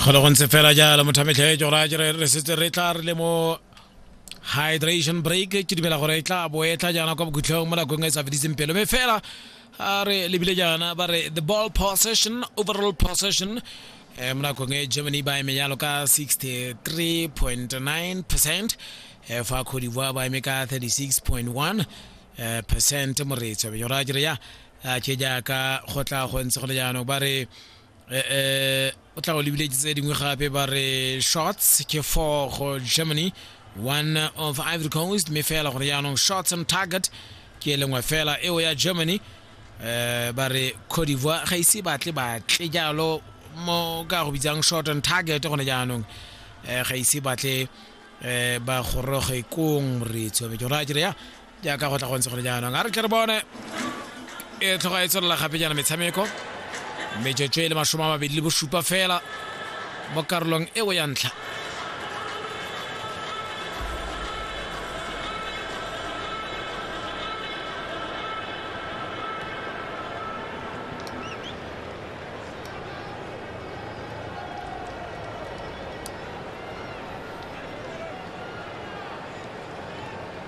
golo go ntse fela jalo mothametlhe jo ra jere re setse re tla re le mo hydration break ke dumela gore e tla bo e tla jaana kwa bokhutlhong mo nakong e sa fediseng pelo mme fela a re lebile jaana ba re the ball possession overall possession um mo nakong e germany ba eme jalo ka 63.9 percent um fa cote divoire ba eme ka 36.1 percent moretso benyora jere ya a ke jaaka go tla go ntse go le jaanong ba re um o tla go lebile tse dingwe gape ba re shots ke four go germany one of ivory coast mme fela gore jaanong shots on target ke e lengwe fela eo ya germany um ba re cote divoire ga ise batle batle jalo mo ka go bitsang short on target gone jaanong um ga ise batle um ba goroge kong re tshobe ke gore a kere ya jaaka go tla go ntse gone jaanong a re tle re bone e tlhoga e tswelela gape jaana metshameko metsotso e le masome a mabedi le bosupa fela mo karolong eo ya ntlha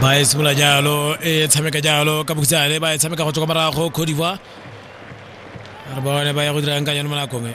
ba e simolola jalo e tshameka jalo ka bokhutshwane ba e tshameka go tswa kwa morago Cote d'Ivoire re bone ba ya go dirang ka yone mo nakong e